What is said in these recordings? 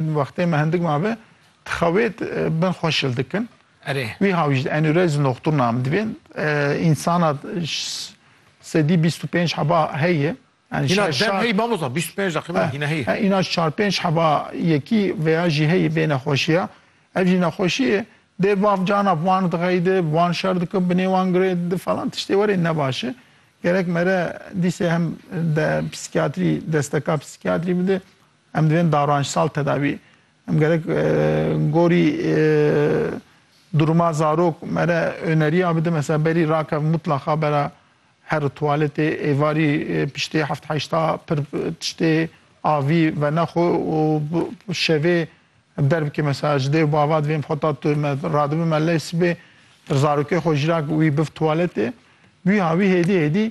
Wextê me hindik mabe tixewêt bin xwe şil dikin. Erê. Wiha wî ji enûrezî noxtur nam dibên. Însana sedî bîst û pênc heba heye. Hîna dem heyî mamosta bîst û pênc deqîme hîna heye. Hîna çar pênc heba yekî veya jî heyî vê nexweşiya. Ev jî nexweşiyê dê bav cana bi wan dixeyde, bi wan şer dike, bi nê wan girê di falan tiştê werê ne baş e. Gerek mere dîsê hem de psîkiyatrî desteka psîkiyatrî bide Em divên daranjsal tedavî. Em gerek gorî duruma zarok me re öneriya bidin. Mesela berî rakev mutlaqa bera her tuwaletê, êvarî piştê heft heşta pir tiştê avî venexwe û bi şevê derbikê mesela ji dêw bava divê em xeta tu me radibin me lê sibê zarokê xwe jî ra wî bif tuwaletê. Wîha wî hêdî hêdî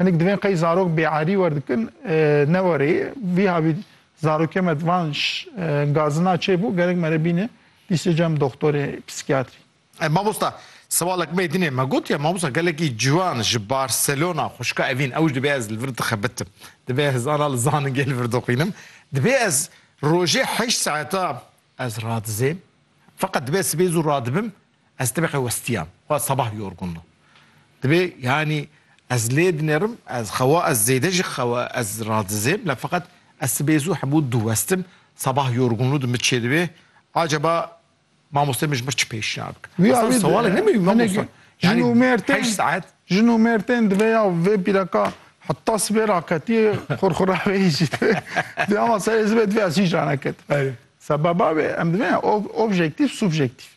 Hinek divên qey zarok bêerî werdikin ne were ye. Vî havî zaroke me di van gazina çê bû gerek mere bîne dîsê cem doxtorê psîkiyatrî. Mamosta sewalek mey dinê me gotiye mamosta gelekî ciwan ji Barcelona xwişka evîn ewj divê ez li vir dixibitim. Divê ez zana li zaningê li vir dixwînim. Divê ez rojê heşt saeta ez radizêm. Feqet divê ez sibê zû radibim Ez tebeqê westiyam. Xwe sebah yorgunlo. Dibê yanî ez lê dinêrim, ez xewa ez zêde jî xewa ez radizêm la feqet ez sibê zû hebû diwestim, sebah yorgunlo di min çêdibê. Acaba mamosteyê min ji min çi pêşniyar bike? Wî awê di hinek jin û mêr tên, jin û mêr tên divê ya vê pîreka heta sibê raketiyê xurxura wê yî jî divê. Dê ama serê zibê divê ez hîç raneketim. Sebeba wê em divê ya objektîf, subjektîf.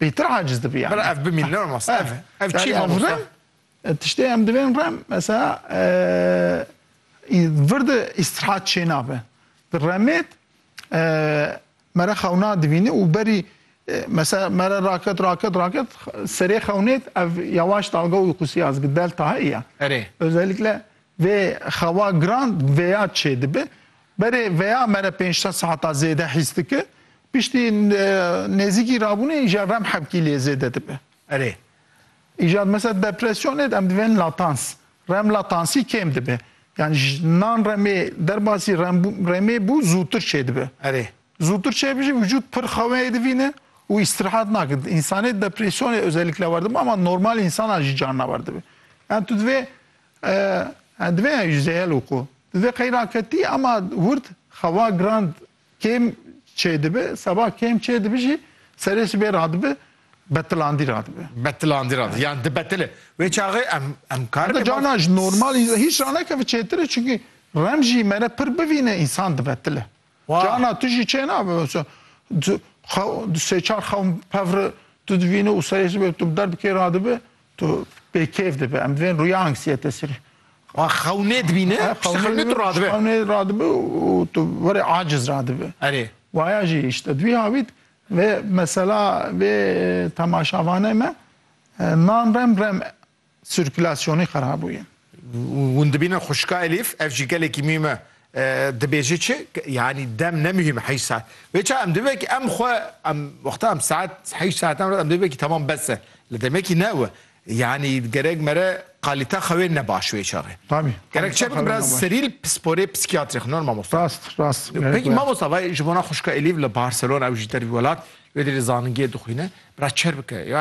pêtir aciz dibi yani. Bela ev bimîn ne mas ev e. Ev çi ma masa? Tiştê em divên rem mesela virdi istirahat çênabe. Di remêt mere xewna dibînî û berî mesela mere raket raket raket serê xewnêt ev yawaş dalga uykusî ya zigi delta heye. Erê. Özellikle vê xewa giran vêya çê dibi. Berê veya me re pênc sed saheta zêde hîs dike. Piştî nêzîkî rabûnê îcar rem hevkî lê zêde dibe. Erê. Îcar mesela depresyonê em divên latans. Rem latansî kêm dibe. Yani ji nan remê derbasî rem remê bû zûtir çêdibe. Erê. Zûtir çêbijî vücut pir xeweyê divîne û îstirahat nake. Însanê depresyonê özellikle war dibe ama normal însanan jî carna war dibe. Yani tu divê Ee, divê ew jî zehel û qû. Di vê qeyra ke tî ema hûrd xewa giran kêm çêdibi, seba kêm çêdibi jî serê sibê radibi betilandî radibi. Betilandî radibi, yan dibetile. Wê çaxê em em kar bikin. Heta cana ji normal hîç ranekevi çêtir e, çimkî remjî mere pir bivîne însan dibetile. Cana tu jî çê nabe sêçar xewn pevri tu divîni û serê sibe tu bi der bikê ra dibe tu pê kêf dibe em divên rûya anksiyete sirî. Xewnê dibîne xewnê tu radibe. Xewnê radibe û tu verê aciz radibe. Erê. Waya jî îşte divî havît vê mesela vê temaşavane me nan rem rem sirkulasyonê xerab bûye. Hûn dibînin xwişka Elîf ev jî gelekî mîm e dibêje çi yanî dem ne mihîm heyş saet. Wê çav em dibêje ki em xwe em wexta em saet heyş saetan re em dibêje ki temam bes e. Li demekî ne we. Yanî gerek mere qalîte xewê ne baş wê çav e. Tabî. Gerek çi bike biraz serî li pisporê psîkîyatrîx norma mamosta. Rast rast. Peki mamosta vay ji bona xwişka Elîf li Barcelona ew jî dervî welat wê derê zaningiyê dixwîne biraz çer bike.